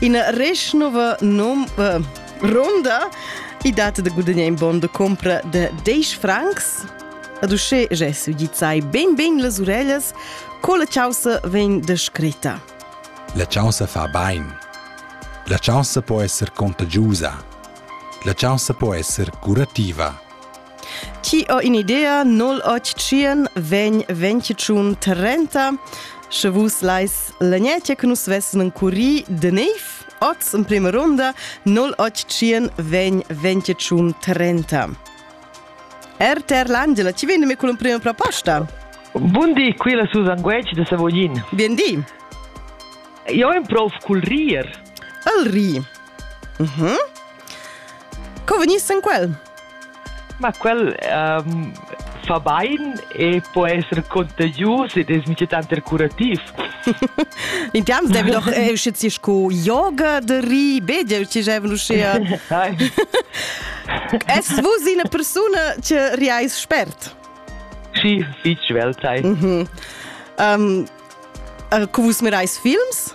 In reschnova nom uh, ronda i data de gudagnare in bon de compra de 10 francs. Ad usce gesu di sai ben ben las orellas, co la chausa ven descritta. La chausa fa bain. La chausa può essere contagiusa. La chausa può essere curativa. Ti ho in'idea, 088 vegn 21 30. Sche vus lais l'agnetta che nus vessen curri de neiv, oz in prima ronda 088 vegn 21 30. RTR L'Angela, ti vendi me con l'prima proposta? Bundi, qui la Susan Guec de Savoglin. Bien di. Io improv col rir. El ri. Mhm. Co vegniss en quel? Ma quel um, fa bain e può essere contagius ed es mica tanter curativ. Intiams devi doch eh, uscizisch cu yoga de ri, bedia ci jevn uschea. Es vus ina persuna che riais spert? Sì, fitch svelt sei. Mhm. Um, uh, cu vus mirais films?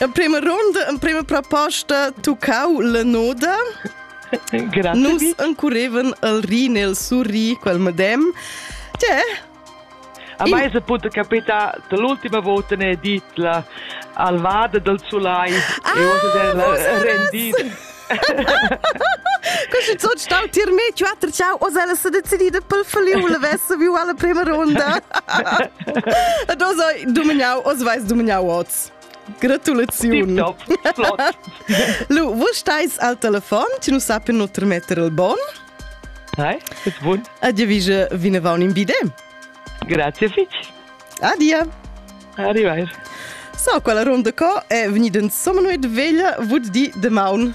En prima ronda, en prima proposta, tuccau la noda. Grazie. Nus encureven el ri nel surri quel medem. Tè? A me se può capita l'ultima volta ne dit la alvada del sulai ah, e osa del rendit. Così so stau tir me quattro ciao o se se decidida pel faliu la vessa viu alla prima ronda. Ed osa dumignau o sveis dumignau oz. Gratulaziun! Lu, vus stais al telefon, ti nu sappi nu tremetter il bon. Hi, bist bun. Addio vige vinavon in bide. Grazie fitg. Adia. Arrivederci. So, quella ronda co è venuta insomma noi de veglia, vud di de maun.